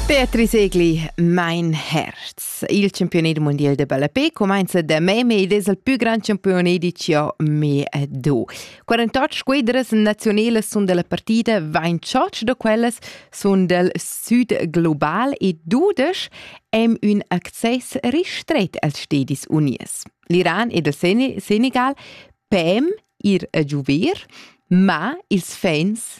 Beatrice Egli, mein Herz. Il campione del mondial de ballapé commenza da me, ma ed es il più gran campione di CME 2. 48 squadras nazionelas sun della partita, 28 da quellas sun del Sud global e 12 haben un access ristret als Stadis Unies. L'Iran ed il Senegal pem ir a giuver, ma ils fans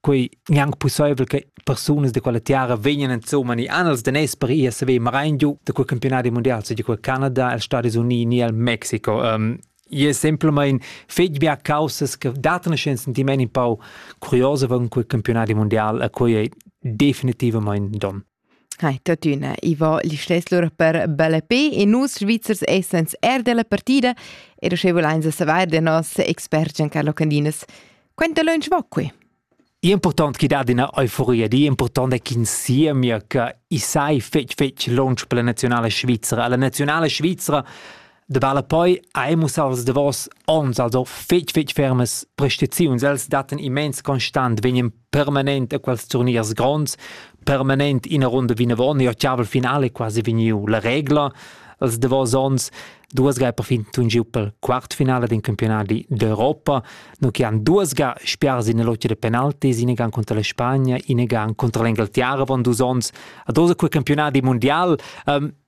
quei gnanc pusseivel che persunas de quella tiara vegnan insomma ni anels de nes per ir a saver marein giu de quel campionati mondial se di quel Canada el Stati Uniti ni el Mexico um, je semplamein fetg bia causas che datano ein sentiment in pau curiosa von quel campionati mondial a quei ei definitivamente don Hai tuttina, i va listess lura per bella pe e nus Svizzers essans er della partida e sche vulains savair da nos experts Giancarlo Candinas, quanta lunsch va qui? Important chi dat üna euforia, di important è ch'ins siemia che i sai fetg fetg lunsch per la nazionale svizzera. La nazionale svizzera de vale poi ha emus als davos ons also fetg fetg fermes prestaziuns els daten immens constant vegnen permanent a quels turniers gronds, permanent ina runda vinavon, e ottavel finale quasi vegniu la regla. Els davos onns duas ga perfin tun giu pel quartfinale din campionati d'Europa, no che han duas ga spiars in lotta de penaltis, in gan contra la Spagna, in gan contra l'Inghilterra von dus ons, a dosa quei campionati mondial. Um,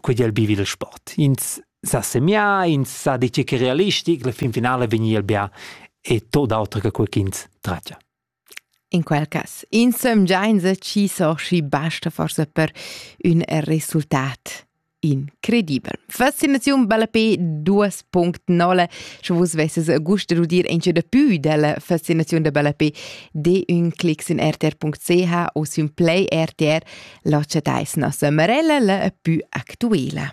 quei di el bivi il sport. Ins sa semià, ins sa dir che realistic, la fin finala vegni el bia e tot auter che quei ch'ins tratga. In quel cas, insomgia ci soci basta forse per un resultat incredibel. Fascinaziun bella pe 2.0, sche vus vesses gust de dir enche de più della fascinaziun de bella pe de un clics in rtr.ch o sul play rtr La chatais nossa Marella la pü actuela.